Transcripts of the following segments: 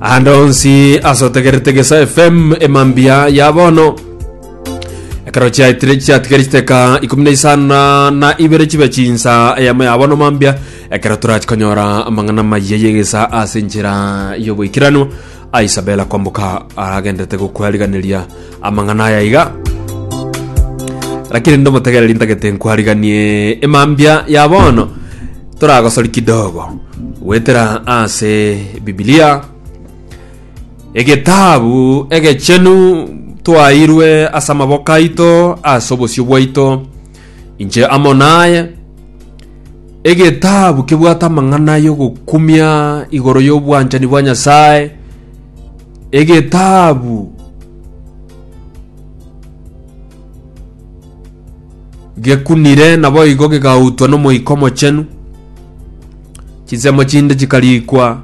ande onsi asotegerete gesa fm emambia ya bono ekero chiaitire chiatigari chiteka ikumi na isana na ibere chibe chinsa eyamo ya bono mambia ekero torachikonyora amang'ana mayiya yegesa ase enchera y'oboikeranu Isabel akomboka aragendete gokwariganeria amang'ana aya iga, Lakini ndomotegereri ntagete nkwariganie emambia ya bono. Toragosori kidogo goetera ase Bibilia, egetabu egechenu twairwe ase amaboko aito ase obosio bwaito. Inche amo naye. Egetabu kebwate amang'ana y'ogokumia igoro y'obwanchani bwa Nyasae. Egetabu gekunire naboigo gegautwa n'Omoika Omochenu. Chinsemo chinde chikarikwa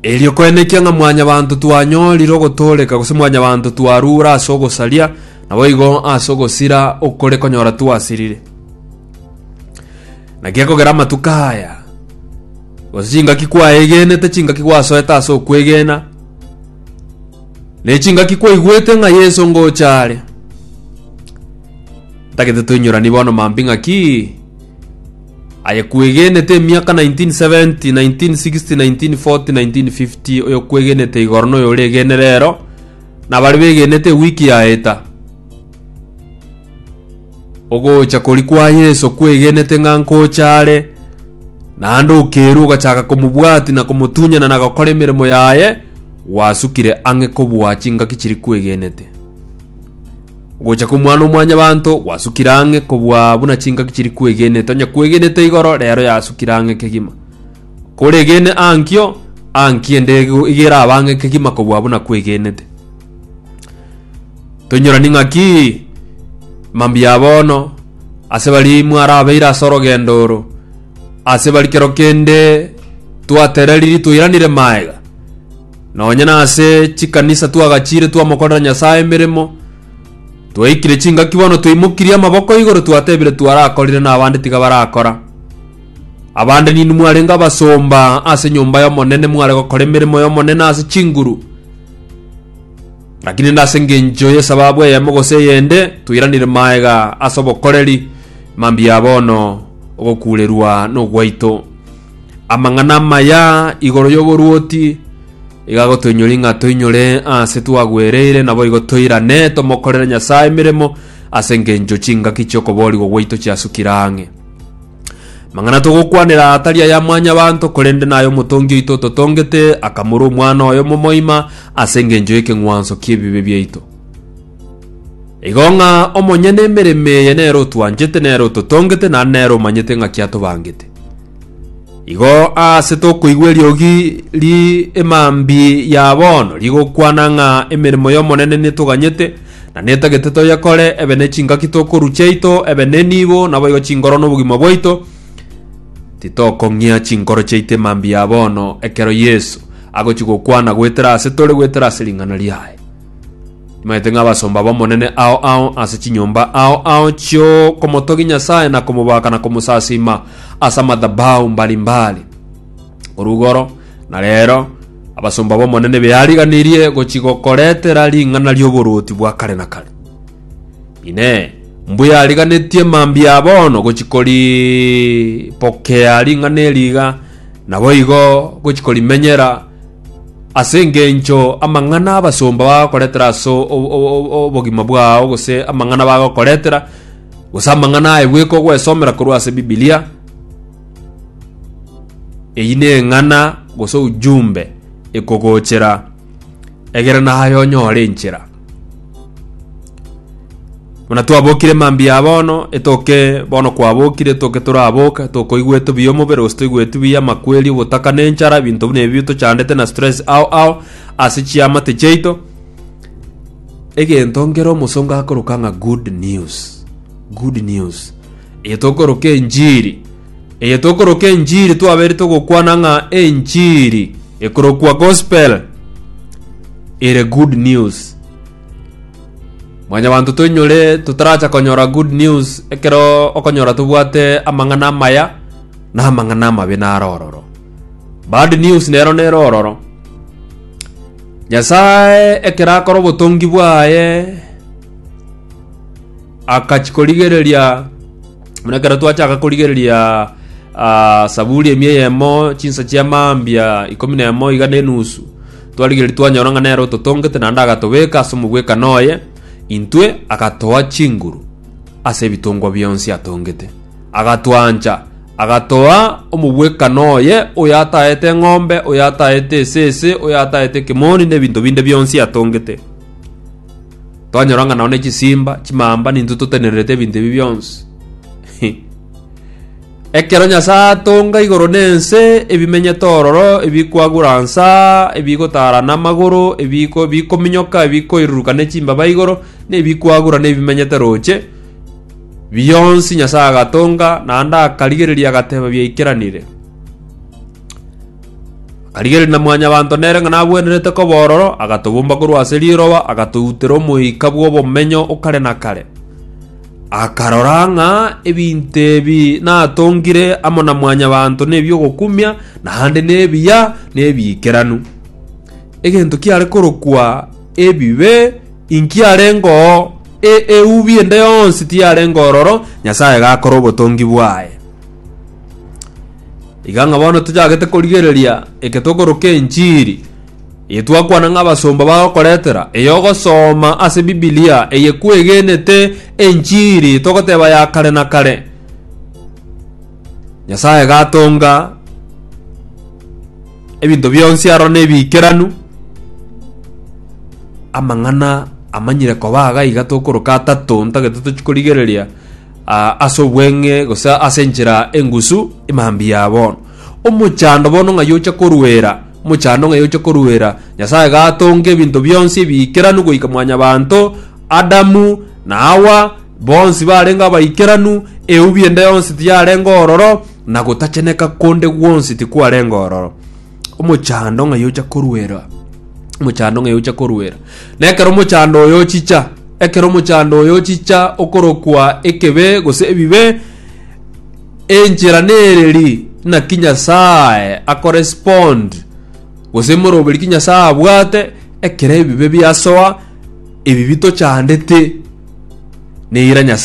Erio koenekia ng'a Mwanyabaanto twanyorire ogotooreka, gose Mwanyabaanto twarure ase ogosaria, naboigo ase ogosira okore konyora twasirire. Naki ekogera amatuko aya, gose chingaki kwaegenete, chingaki gwasoete ase okwegena, ne chingaki kwaigwete ng'a Yeso ngocha are, ntagete toinyoranie bono mambia ng'aki Aye kwegenete emiaka 1970, 1960, 1940, 1950, oyo kwegenete igoro noyo oregene rero, na bari begenete ewiki yaeta. Ogocha kori kwa Yeso kwegenete ng'a nkocha are, naende okerwa ogachaka komobwati na komotunyana na gokora emeremo yaye, gwasukire ang'e kobua chingaki chiri kwegenete. Ogocha kw'Omwana-o-mwanyabanto gwasukire ang'e kobua buna chingaki chiri kwegenete, onye kwegenete igoro, reero yasukire ang'e kegima. Koregene ankio, ankio ende iga erabe ang'e kegima kobua buna kwegenete. Toinyorani ng'aki mambia bono ase bari mwarabeire ase orogendo oro, ase bari kero kende twatereriri toiranire maega, Nonye nase chikanisa twagachiire twamokorera Nyasae emeremo, twaikire chingaki bono twaimokirie amaboko igoro twatebire twarakorire n'abande tiga barakora. Abande ninwe mwarenge abasomba ase nyomba y'Omonene mware gokora emeremo y'Omonene ase chinguru. Lakini nde ase engencho y'esababu eyemo gose eyende toiranire maega ase obokoreri mambia ya bono ogokuurerwa nogwaito. Amang'ana amaya igoro y'oboruoti igagotoinyoria ng'a toinyore aase twagwereire, naboigo toirane tomokorere Nyasae emeremo ase engencho chingaki chi'okoboorigwa gwaito chiasukire ang'e. Mang'ana togokwanera tari aya mwanyabanto, korende naya Omotongi oito ototongete, akamura Omwana oye omomoima ase engencho y'ekeng'wanso ki'ebibe biaito. Igo ng'a omonyene emeremo eye nere otwanchete, nere ototongete, naende nere omanyete ng'aki atobangete. Igo aase tokoigwa eriogi ri emambi ya bono rigokwana ng'a emeremo y'Omonene netoganyete, na netagete toyekore, ebe ne chingaki tokorwa chiaito, ebe ne nibo, naboigo chingoro na obogima bwaito. Titokong'ia chinkoro chiaito emambi ya bono ekero Yeso agochia gokwana goetera ase tore, goetera ase ring'ana riaye. Nimaete ng'abasomba b'Omonene ao ao ase chinyomba ao ao chi'okomotogia Nyasae na komobaaka na komosasiima ase amadhabahu mbari mbari. Korwa igoro na reero abasomba b'Omonene beariganirie gochigokoretera ring'ana ri'oborwoti bwa kare na kare. Inee! Mbuya ariganetie mambia a bono gochikoripokea ring'ana eri iga, naboigo gochikorimenyera Ase engencho amang'ana abasomba bagakoretera ase obogima bwao, gose amang'ana bagokoretera, gose amang'ana aye bweka ogwesomera korwa ase Bibilia, eyio neng'ana gose ujumbe ekogochera egere naye onyore enchera. Buna twabokire mambia ya bono, etoke bono kwabokire, etoke toraboka, etoke oigwete buya omobere, gose toigweti buya amakweri, ogotaka na enchara, ebinto buna ebi bichandete na stress ao ao, ase chiamate chiaito. Egento nkere omosongo akoroka ng'a good news, good news. Eye tokoroka enchiri. Eye tokoroka enchiri twabeire togokwana ng'a enchiri ekorokwa gospel ere good news. Mwanyabanto toinyore totaracha konyora good news ekero okonyora tobwate amang'ana amaya na amang'ana amabe naro ororo. Bad news nero nere ororo. Nyasae ekero akora obotongi bwaye akachikorigereria Buna ekero twachaka korigereria ah, saburi ime eyemo chinsa chia mambia ikomi na emo iga na enusu twarigereria twanyora ng'a nere ototongete naende agatobeka ase omogwekano oye intwe agatoa chinguru ase ebitongwa bionsi atongete agatwancha agatoa omogwekano oye oyo ataete eng'ombe oyo ataete esese oyo ataete ekemoni na ebinto binde bionsi atongete Twanyora ng'a nonya chisimba, chimamba nintwe totenererete ebinto ebi bionsi. Ekero Nyasae atonga igoro na ense, ebimenyete ororo, ebikwagura nsa, ebigotara namagoro, ebiko- bikominyoka, ebikoiruruka ne chimbaba igoro, na ebikwagura na ebimenyete roche, bionsi Nyasae agatonga, naende akarigereria agateba biaikeranire. Akarigereria na Mwanyabaanto nere ng'a nagwenerete koba ororo, agatobomba korwa ase riroba, agatoutera omoika bw'obomenyo o kare na kare. Akarora ng'a ebinto ebi natongire amo na Mwanyabaanto nebi'ogokumia, naende nebiya, na ebiikeranu. Egento kiare korokwa ebibe, inki arenge oo? E eubi ende yonsi tiyarenge ororo, Nyasaye gakora obotongi bwaye. Iga ng'a bono tochagete korigereria eke tokoroka enchiri eye twakwana ng'a abasomba bagokoretera, eye ogosoma ase Bibilia eye kwegenete enchiri togoteba ya kare na kare. Nyasaye gatonga ebinto bionsi aro nebiikeranu, amang'ana amanyire koba iga tokoroka atato ntagete tochi korigereria ase obweng'e, gose ase enchera engusu emambia ya bono. Omochando bono ng'ai oche koruera? Omochando ng'ai oche koruera? Nyasae gatonga ebinto bionsi ebiikeranu goika mwanyabanto, Adamu, na Hawa, bonsi barenge abaikeranu, eubi ende yonsi tiyarenge ororo, na gotacheneka konde gwonsi tikwarenge ororo. omochando ng'ai ocha koruera omochando ng'ai ocha koruera na ekero omochando oyo ochicha ekero omochando oyo ochicha okorokwa ekebe gose ebibe enchera nereri naki nyasaye akorespond gose moroberi ki nyasaye abwate ekero ebibe biasoa ebibi tochandete neira nyasaye